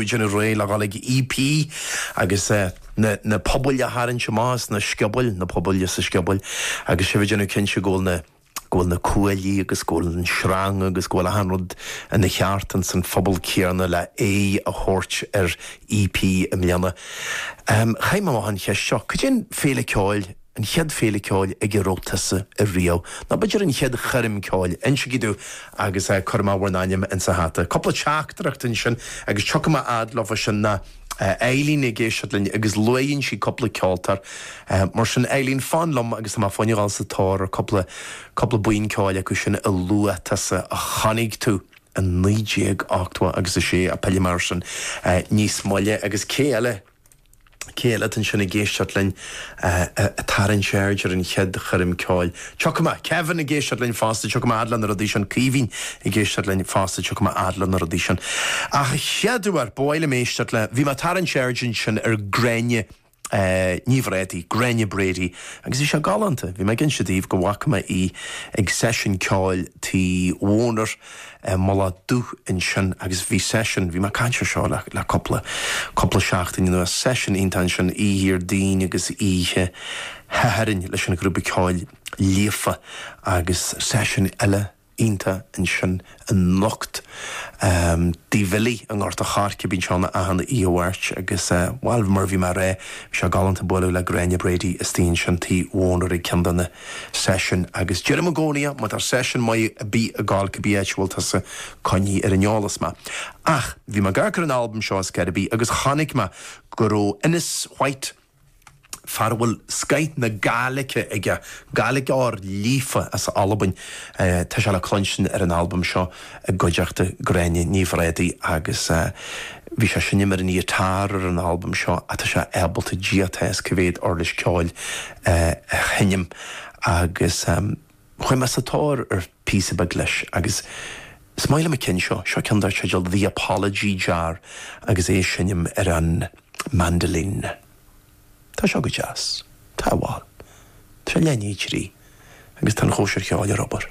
Déanamh réidh le dhul ag EP agus na pubaill a tharraingt amach as na sciobóil, na pubaill as na sciobóil, agus sibh ag déanamh cinnte go bhfuil na, go bhfuil na cuaillí agus go bhfuil an sreang agus go bhfuil achan rud ina cheart ins an phuball céanna le aghaidh a thabhairt ar EP i mbliana. Chaith mé amach an cheist seo, cad é an féile ceoil, an chéad féile ceoil ag a raibh tusa ariamh, nó b'fhéidir an chéad choirm ceoil, insigí domh, agus cuirfidh mé bhur n-ainm insa hata. Cúpla teachtaireacht ansin, agus tiocfaidh mé a fhad leofa sin tá Eileen ag éisteacht linn, agus luaigheann sí cúpla ceoltóir. Mar sin, Eileen, fan liom, agus tá mé fá choinne dhul sa tóir ar cúpla, cúpla buíon ceoil acu sin a luaigh tusa, a chonaic tú i naoi déag ochtó agus a sé, ach pillfidh mé air sin níos moille. Agus cé eile? cé eile atá ansin ag éisteacht linn, ag tarraingt aird ar an chéad choirm ceoil. Tiocfaidh mé, Kevin ag éisteacht linn fosta, tiocfaidh mé a fhad le na rudaí sin, Caoimhín ag éisteacht linn fosta, tiocfaidh mé a fhad le na rudaí sin. Ach a chéad uair, ba mhaith liom éisteacht le, bhí mé ag tarraingt aird ansin ar Gráinne Ní Bhrádaigh, Gráinne Brady, agus bhí sé galánta, bhí mé ag inse daoibh go bhfaca mé í ag seisiún ceoil Tigh Bhonner, eh, Mullach Dubh ansin agus bhí seisiún, bhí mé ag caint ar seo le, le cúpla, cúpla seachtain anuas, seisiún iontach ansin oíche Dhéardaoin agus oíche Shathairn leis an ghrúpa ceoil Líofa agus seisiún eile iontach ansin anocht ehm, Tigh Bhilly i nGort a' Choirce, bíonn sé ann achan oíche Mháirt agus eh, bhuel mar a bhí mé a' rá, bhí sé galánta bualadh le Gráinne Brady istigh ansin, Tigh Bhonner ag ceann de na. seisiúin agus deirim i gcónaí má tá seisiún maith ar bith ag gabháil cibé áit a bhfuil tusa coinnigh ar an eolas mé. Ach bhí mé ag amharc ar an albam seo ar scor ar bith agus chonaic mé go raibh Innes White, fear a bhfuil scoith na Gaeilge aige, Gaeilgeoir líofa as Albain, tá sé le cluinstin ar an albam seo. i gcuideachta Gráinne Ní Bhrádaigh agus bhí sé ag seinm ar an ghiotár ar an albam seo ach tá sé ábalta ag Dia atá a fhios cé mhéad uirlis ceoil a sheinm agus chuaigh mé sa tóir ar phíosa beag leis agus is maith liom an ceann seo, seo ceann dar teideal The Apology Jar agus é ag seinm ar an mandolin. Tá seo go deas, tá, bhal, tá sé leath i ndiaidh a trí agus tá an chóisir cheoil ar obair.